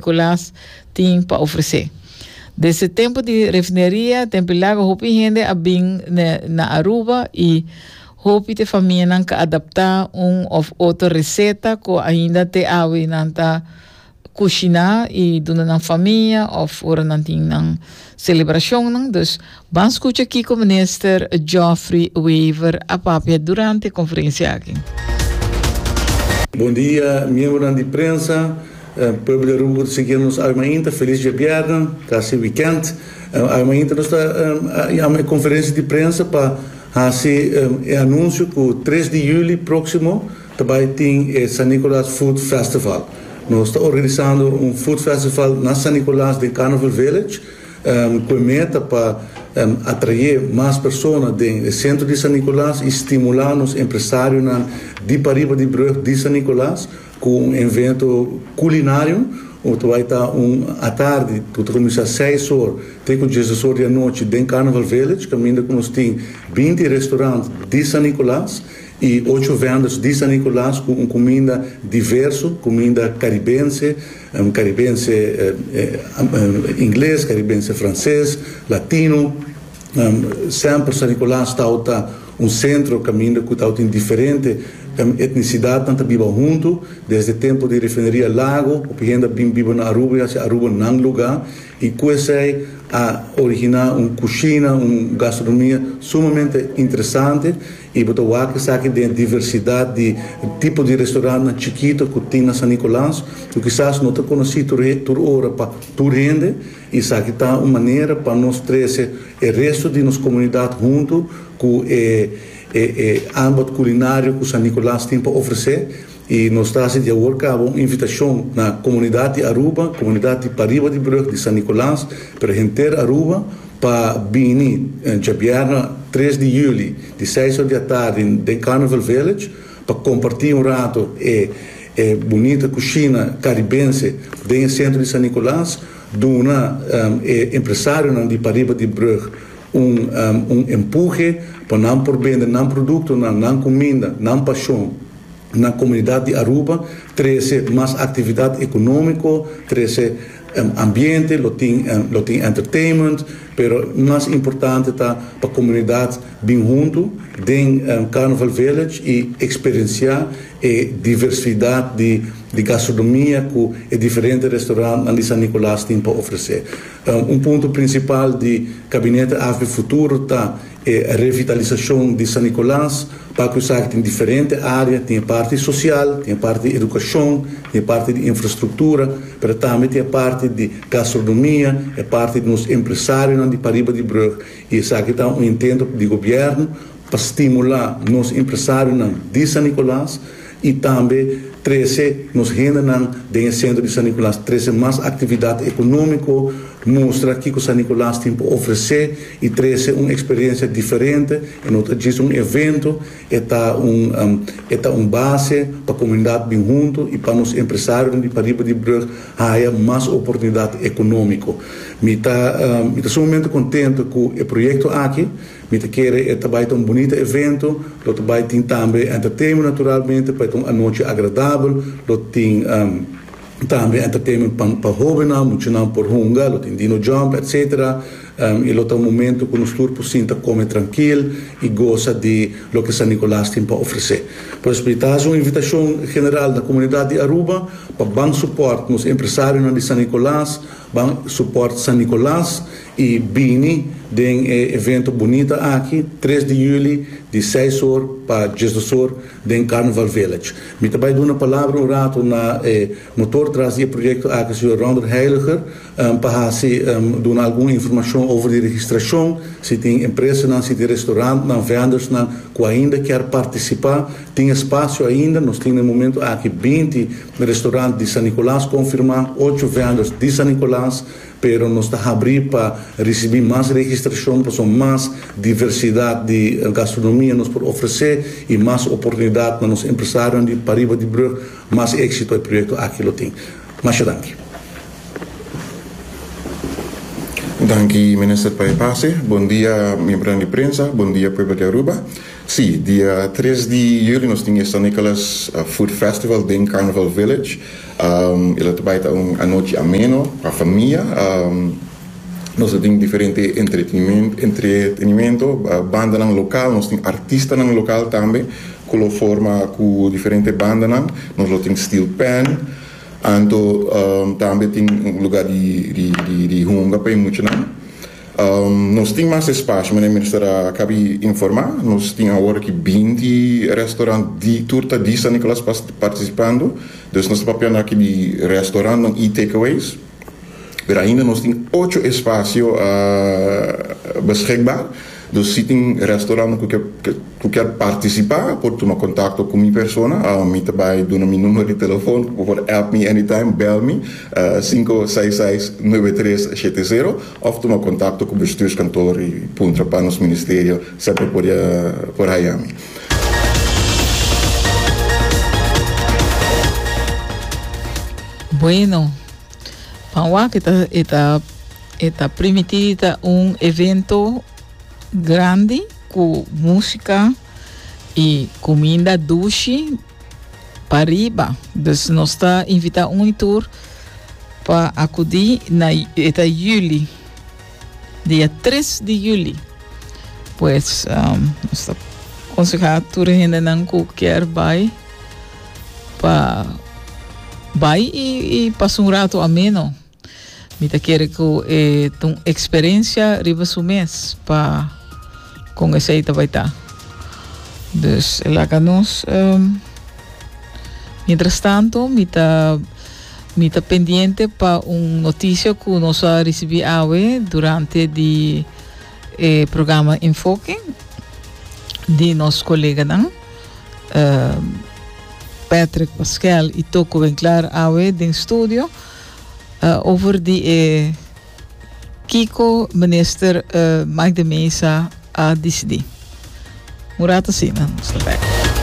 Kulas tin pa ofresé. Desde tempu di refineria den Pilago hopi hende a bin na Aruba y hopi te famianan ka adapta un of otro reseta cu ainda te awe nan ta cushina y duna nan famia of ora nan tin nan celebracionnan. Dus Ban scucha kico Minister Geoffrey Wever a papia durante e conferencia aki. Bon dia miembronan di prensa, pueblo di Aruba cu ta sigui nos almainta feliz diabièrnè, casi weekend. Almainta nos ta jama e conferencia di prensa pa haci e anuncio cu tres di juli proximo ta bay tin e San Nicolas Food Festival. Nos ta organisando un food festival na San Nicolas den Carnival Village. cu e meta pa atrae mas persona den e centro di San Nicolas y stimula nos empresarionan di pariba di brug di San Nicolas cu un evento culinario cu ta bay ta un atardi cu ta cuminsa seis or te cu dieses or di anochi den Carnival Village caminda cu nos tin binti restaurant di San Nicolas y ocho vendors di San Nicolas cu un cuminda diverso, cuminda caribense. Karibense Ingles, Karibense Franses, Latino, semper San Nicolas tawata un sentro kaminda ku tawata tin diferente etnisidatnan ta biba huntu desde tempu di Refineria Lago hopi hende a bin biba na Aruba i hasi Aruba nan luga i ku esei a originá un kushina un gastronomia sumamente interesante. I bo ta wak esaki den e diversidat di tipo di restaurantnan chikito ku tin na San Nicolas, ku kisas no ta konosí tur tur ora pa tur hende. I esaki ta un manera pa nos trese e restu di nos komunidat huntu ku e e e anbod kulinario ku San Nicolas tin pa ofresé. I nos ta hasi di awor caba un invitacion na comunidad di Aruba, comunidad di pariba di brug di San Nicolas, pero henter Aruba pa bini djabièrna tres di juli di seis or di atardi den Carnival Village pa comparti un rato e e bunita cushina caribense den e centro di San Nicolas, duna e empresarionan di pariba di brug un un empuje pa nan por bende nan productonan, nan cuminda, nan pasion. na comunidad di Aruba, trece mas actividad economico, trece ambiente, lo tin lo tin entertainment, pero mas importante ta pa comunidad bin hunto den Carnival Village y experiencia e diversidad di di gastronomia cu e diferente restaurant nan di San Nicolas tin pa ofrece. Un punto principal di Gabinete AFB Futuro ta. E revitalisashon di San Nikolas ta kusá ku tin diferente área, tin e parti sosial, tin e parti di edukashon, tin e parti di infrastruktura, pero tambe tin e parti di gastronomia, e parti di nos empresarionan di pariba di brug i esaki ta un intento di gobièrnu pa stimulá nos empresarionan di San Nikolas y tambe trece nos hendenan den e Centro di San Nicolas trece mas actividad economico, mustra kico San Nicolas tin pa ofrece y trece un experiencia diferente, e no ta djis un evento, e ta un e ta un base pa comunidad bin hunto y pa nos empresarionan di pariba di brug haya mas oportunidad economico. Mi ta mi ta sumamente contento cu e proyecto aki. Mi ta kere e ta bai ta un bunita evento, lo ta bai tin tambe entertainment naturalmente pa e ta un anochi agradabel, lo tin tambe entertainment pa pa hobennan, muchanan por hunga, lo tin dino jump etc. I lo ta un momento ku nos tur por sinta kome trankil i gosa di loke San Nicolas tin pa ofresé. Por esei mi ta hasi un invitashon general na komunidat di Aruba pa ban supòrt nos empresarionan di San Nicolas, ban supòrt San Nicolas I bini den e evento bunita aki, tres di juli, di seis or pa dies dos or, den Carnival Village. Mi ta bai duna palabra un ratu na e motor tras di e proyekto aki, señor Rounder Heiliger, pa hasi duna algun informashon over di registrashon, si tin empresanan, si tin restorantnan, vendersnan ku ainda kier partisipá, tin espasio ainda. Nos tin na e momentu aki binti restorant di San Nicolas konfirmá, ocho venders di San Nicolas. Pero nos ta habrí pa risibí mas registrashon pasobra mas diversidat di gastronomia nos por ofresé i mas oportunidat na nos empresarionan di pariba di brug. Mas éksito e proyekto aki lo tin. Masha danki. Danki Minister pa e pase. Bon dia miembronan di prensa. Bon dia pueblo di Aruba. Sí, dia tres di juli nos tin e San Nicholas Food Festival den Carnival Village. E lo ta bai ta un anochi ameno pa famia. Nos lo tin diferente entretenimento, bandanan lokal, nos tin artistanan lokal tambe ku lo forma ku diferente bandanan. Nos lo tin steel pan, anto tambe tin un lugar di hunga pa e muchanan. Nos tin mas espasio, mene Minister a kabi informa. Nos tin awor aki binti restaurant di tur ta di San Nicolas partisipando. Dus nos ta papiando aki di restaurantnan i takeaways. Pero ainda nos tin ocho espasio beschikbaar. Dus si tin restaurantnan ku ke Cu kier participa por tuma contacto cu mi persona mi ta bay duna mi numero di telefon cu bo por app mi anytime bel mi sinku seis seis nuebe tres shete zero of tuma contacto cu bestuurskantoor y puntra pa nos ministerio semper por haya mi. Bueno, pa wak e ta e ta e ta primiti di ta un evento grandi cu musica y cuminda dushi pa riba. Dus nos ta invita un y tur pa acudi na eta juli, dia tres di juli. Pues um, nos ta conseha tur hendenan cu kier bay pa bay y, y pasa un rato ameno. Mi ta kere ku e ta un eksperensia riba su mes pa kon esei ta bai ta. Dus e laga nos. Um, mientras tanto, mi ta mi ta pendiente pa un noticia ku nos a risibi awe durante di e programa Enfoke di nos koleganan um, Patrick Pascual i Toko Benclar awe den studio. Over di e kiko Minister Mike de Meza a disidí. Un rato asina nos ta bek.